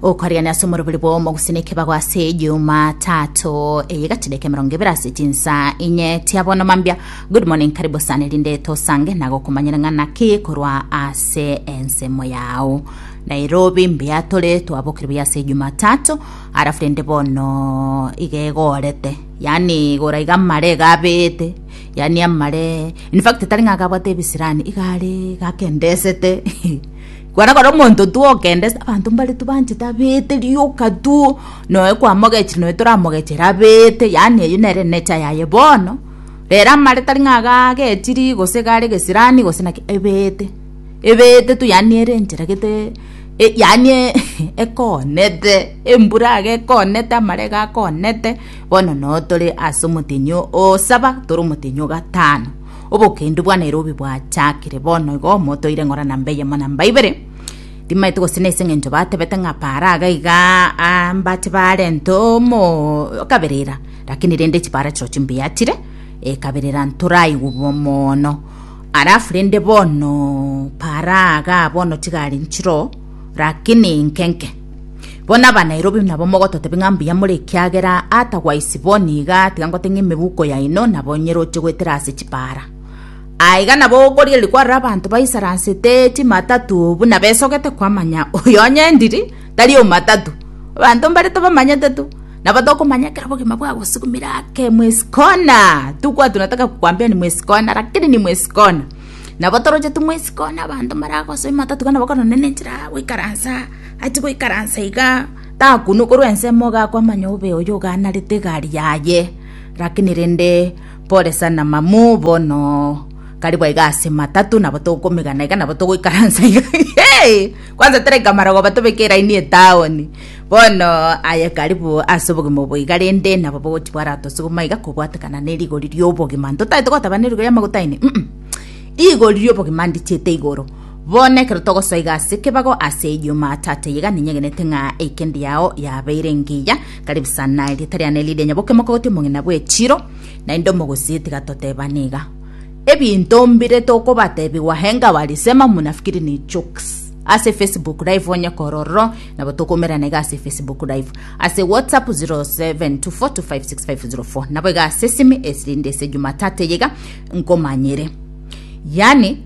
okoriana ase omorobori bwomo gusina ekebago ase juma tato eye gatideke mirongo ibere ase tinsa inye tiabono mambia good morning karibu sana erinde tosange nagokomanyera ng'a naki korwa ase ensemo yao nairobi mbuya tore twabokire buya ase juma tato arafu rende bono igegorete yani igora iga amare gabete yani amare in fact tari ng'a gabwate ebisirani igare gakendesete Kwana kore omonto twokende ase abanto mbare tobanchete abeete rioka tu, noe kwamogechire noe toramogechere abeete, yaani eyio nere nature yaye bono, rero amare tari ng'a iga agechiri gose iga are gesirani gose naki, ebeete, ebeete tu yaani ere enchera gete e- yaani ekoonete, embura iga ekoonete amare iga akoonete, bono noo tore ase omotenyi o- osaba tore omotenyi o gatano. Obokendu bwa Nairobi bwachakire bono igo motoire ng'ora namba eyemo namba ibere timaete gose nese ng'encho batebete ng'a para aga iga ah, mbache barente omo kaberera lakini rende chipara chiro chimbuya chire ekaberera ntoraigwe bo mono alafu rende bono para aga bono chigari nchiro lakini nkenke Bono Abanairobi nabo mogototebia ng'a mbuya more ekiagera ata gwaisibwa oo niga tiga ngote ng'a emebuko yaino nabo nyeroche goetera ase chipaara. Aa iga nabo okorigereria kwarora abanto baisaransete chimatatu buna besogete kwamanya oyo onye ndiri tari omatatu. Abanto mbare tobamanyete tu nabo tokomanya ekero obogima bwagosugumire ake mwesi kona tugwatwa nataka kukwambia ni mwesi kona lakini ni mwesi kona. Nabo toroche ting'we isiko nabanto mbaragosoe matatu iga nabo korende nenchera goikaransa ati goikaransa iga takunukorwa ensemo gakwamanya obe oyo oganarete egari yaye rakini rende pore sana mamu bono karibu aiga ase matatu nabo tokomegana iga nabo togoikaransa iga kwanza tereka marogoba tobeke eraini etaoni. Bono aye karibu ase obogima obo iga rende nabo bogochi bwaratose goma iga kobwatekana ne rigori ri'obogima ntotaete gotaba ne rigori y'amaguta aine mm rigori ri'obogima ndichiete igoro bono ekero togosoa iga ase ekebago ase ejuma tata iga ninyegenete ng'a eikendi yao yabeire engiya karibu sana erieta riane riria nyaboke mokogoti omong'ina bw'echiro naende omogosie tiga totebane iga ebinto mbire tokobatebigwa henga walisema mnafikiri ni jokes ase facebook live onye kororo Nabo tokomerana iga ase Facebook live, ase WhatsApp 0724256504 nabo iga ase esimi esirinde ase Jumatatu eye iga nkomanyere. Yani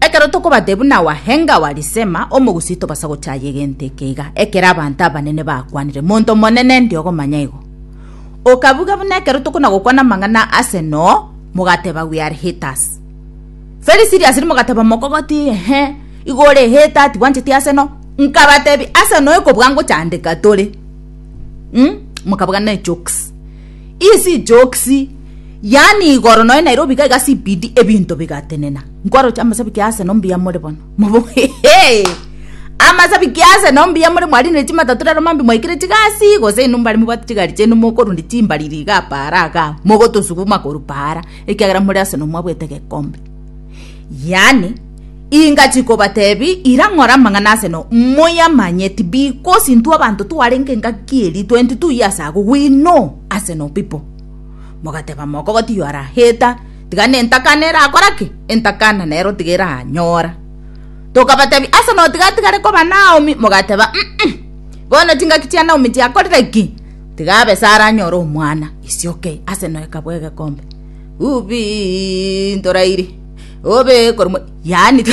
ekero tokobate buna wahenga wa Lisema omogusi tobasa gochaya egento eke iga ekero abanto abanene bakwanire monto monene ndi ogomanya igo. Okabuga buna ekero tokona gokwana amang'ana ase noo mogateba we are haters. Very serious mogateba mokogotie ehe igo ore ehe tati bwancheti ase no nkabatebi ase no ekobua ngochandeka tore mm mokabagana ne jokes ii si jokes yaani igoro noe Nairobi iga iga CBD ebinto bigatenena nkwaroche amasabiki ase no mbuya more bono mobo hehe amasabiki ase no mbuya more mwarinire chimatatu rero mambia mwaikire chigasi gose inwe mbare mobwate chigari chiaino mokorundia chimbariri iga paara iga mogotosuguma korwa paara ekiagera more ase nomwabwete gekombe. Yaani, inga chikobatebi ira ng'ora amang'ana ase no, moyamanyeti, because intwe abanto twarenge engaki eri, twenti tuyi ase agwo, we know ase no people. Mogateba mokogoti you are a hater, tiga nentakana erakora ki? Entakana nero tiga eranyora. Tokabatebi ase no tiga atigare koba Naomi, mogateba, mm-mm, bono chingaki chia Naomi chiakorire ki? tiga abe Sara anyore omwana isioke ase noyoka bw'egekombe. Ubii, ntorairi. Obe korwa mo... Yaani,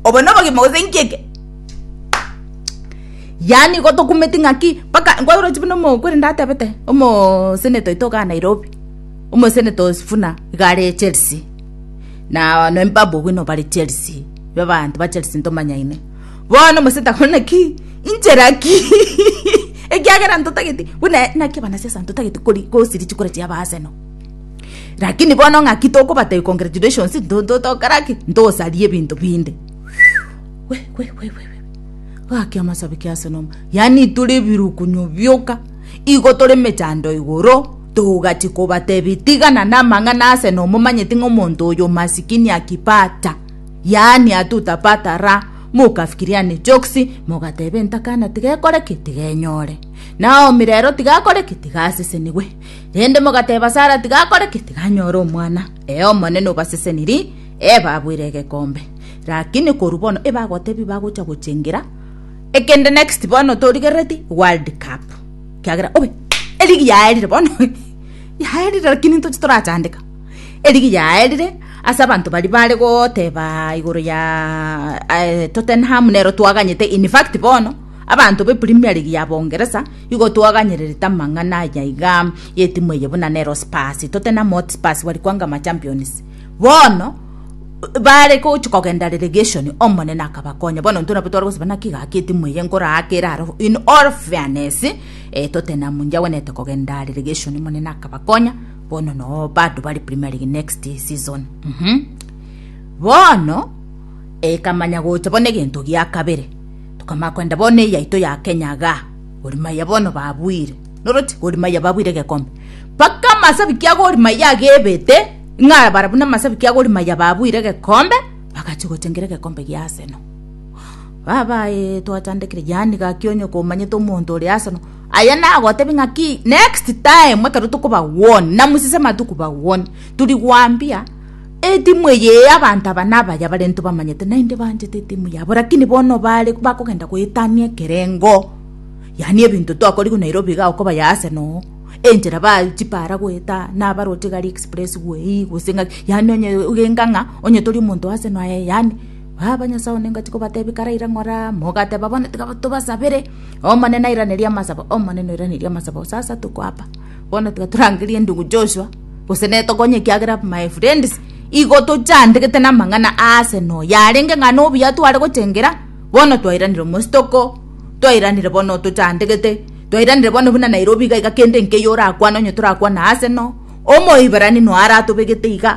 obo nobogima gose inki eke? Yaani, gotokumeti ng'aki mpaka nkworochi buna omokori ndatebete omoseneto oito igaa Nairobi, omoseneto o Sifuna iga are Chelsea, na no Mbabwe buna bare Chelsea, babanto ba Chelsea ntomanyaine. Bono omosio takore naki? Inchera ki? Ekiagera ntotagete, buna naki abanasiasa ntotagete kori gosiria chikura chiabo ase no. Lakini bono ng'aki tokobatebia congratulations ntotokora ki? Ntosaria ebinto binde. We, we, we, we, we. Gaki amasabi ki ase nomo. Yani tore ebirukunyo bioka. Igo tore mechando igoro. Togachi kobatebia tigana na amang'ana ase nomo manyeti ng'omonto oyo masikini akipata. yaani atutapata ra, mokafikiriane chioksi, mogateba entakana tigekore ki? Tigenyore. Naomi rero tigakore ki? Tigasesenigwe. Rende mogateba Sara tigakore ki? Tiganyore omwana. Ee, Omonene obaseseniri, ee, baboire egekombe. Rakini korwa bono ebagotebia bagocha gochengera ekende next bono torigerereti World Cup. Kiagera obe, eligi yaerire bono, yaerire rakini ntoche torachandeka. Erigiya yaerire ase abanto baria baare goteeba igoro ya Tottenham nero twaganyete, in fact bono abanto be Premier League ya Boongeresa igo twaganyererete amang'ana aya iga y'etimu eye buna nero Spurs, Tottenham Hotspurs bari kwanga Machampions. Bono baare gochia kogenda relegation Omonene akabakonya bono intwe nabo tware gosaba naki gaki etimu eye nkoraake erare in all fairness Tottenham inche agwenete kogenda relegation Omonene akabakonya. Bono no bado bari Premier League next season. Mhm. Bono ekamanya gocha bono egento gia kabere. Tokamanya kwenda bono eye yaito ya Kenya ga. Gor Mahia bono babuire. Noroti Gor Mahia babuire egekombe. Paka amasabiki a Gor Mahia agebete ng'a bara buna amasabiki a Gor Mahia babuire egekombe bagachi gochengera egekombe gia Arsenal. Baba eh, twachandekire yani gaki onye komanyete omonto ore Arsenal Aye nagotebie ng'aki next time ekero tokobagwonia namosese amatuko bagwonie turi gwambia etimu eye eye abanto aba nabaya barento bamanyete naende banchete etimu yabo lakini bono bare bakogenda goetania ekerengo yaani ebinto twakoriwu Nairobi iga okobaya Arsenal oo enchera ba chipara goeta nabaroche gari express gwe ii gose ng'aki yaani onye ogenka ng'a onye tori omonto wa Arsenal aye yaani baba nyasae one ngachi kobatebia karaira ng'ora mogateba bono tiga tobasabere. Omonene airanerie amasabo, Omonene oiranerie amasabo, gose ase tokoaba. Bono tiga torangerie ndugu Joshua, gose nere tokonye ekiagera my friends, igo tochandegete namang'ana aase noyo arenge ng'a nobuya tware gochengera, bono twairanire omosi toko, twairanire bono tochandegete, twairanire bono buna Nairobi iga iga kende nkeiyo orakwane onye torakwane aase no, Omoiberani noyo aratobegete iga.